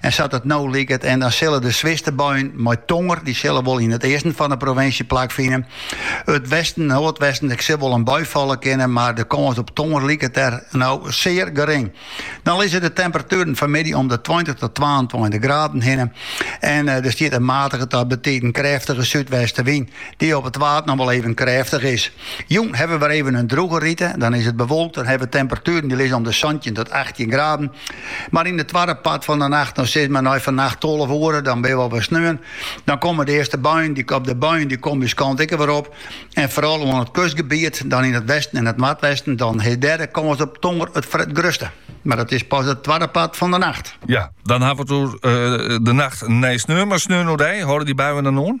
En sa't it no liket, en dan sille de swierste buien mei tonger, dy sille wol yn it easten fan de provinsje plak fine. It westen, noardwesten, ek sil wol in bui falle kinne, mar de kâns op tonger liket dêr no sear gering. Dan lizze de temperatueren fanmiddei om de tweintich tot twaentweintich graden hinne en eh, der stiet in matige ta betiden krêftige súdwestenwyn, dy op it Waad noch wol even krêftich is. Jûn hawwe we wer even in droege rite, dan is it bewolkt en hawwe we temperatueren dy lizze om de santjin tot achttjin graden. Mar yn it twadde part fan 'e nacht, no sis mar nei fannacht tolve oere, dan binne we al op sneon, dan komme de earste buien op, de buien dy komme ús kant ek wer op en foaral oan it kustgebiet, dan yn it westen en it noardwesten, dan is dêr de kâns op tonger it grutste. Mar dat is pas it twadde part fan 'e nacht. Ja, dan hawwe we it oer de nacht nei sneon, mar sneon oerdei, hâlde dy buien dan oan?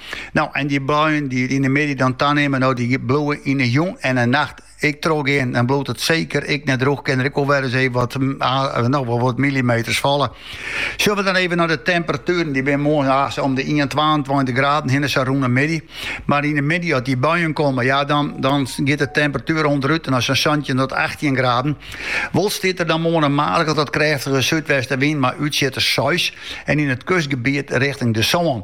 No, en dy buien dy't yn 'e middei dan tanimme, no dy bliuwe yn 'e jûn en 'e nacht ek trochgean. Dan bliuwt it seker ek net drûch, kin der ek wol wer ris even wat, no, wol wat millimeters falle. Sille we dan even nei de temperatueren, dy binne moarn om de 21, 22 graden hinne sa rûn 'e middei. Mar yn 'e middei as dy buien komme, ja, dan, dan giet de temperatuer ûnderút nei sa'n santjin tot 18 graden. Wol stiet der dan moarn in matige tot krêftige súdwestenwyn mei útsjitters seis en yn it kustgebiet richting de sân.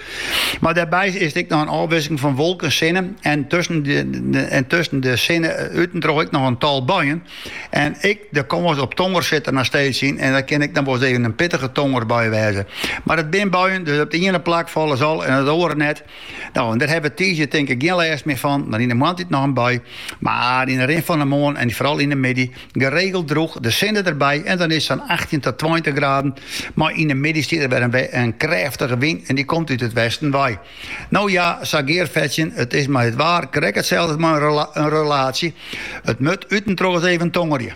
Mar dêrby is it ek noch in ôfwisseling fan wolken, sinne en tusken de sinne út en troch ek noch in tal buien. En ek de kâns op tonger sit der noch steeds yn en dat kin ek noch wolris even in pittige tongerbui wêze. Mar it binne buien, dus op it iene plak falle se al en op it oare net. No, en dêr hawwe we tiisdei tink ik gjin lêst mear fan, mar yn de moarntiid noch in bui. Mar yn de rin fan de moarn en foaral yn de middei Geregeld drûch, de sinne derby en dan is it sa'n achttjin ta tweintich graden. Mar yn de middei stiet der wer in krêftige wyn en dy komt út it westen wei. No ja, sa gearfetsjend, it is mei it waar krekt itselde as mei in relaasje, it moat út en troch ris even tongerje.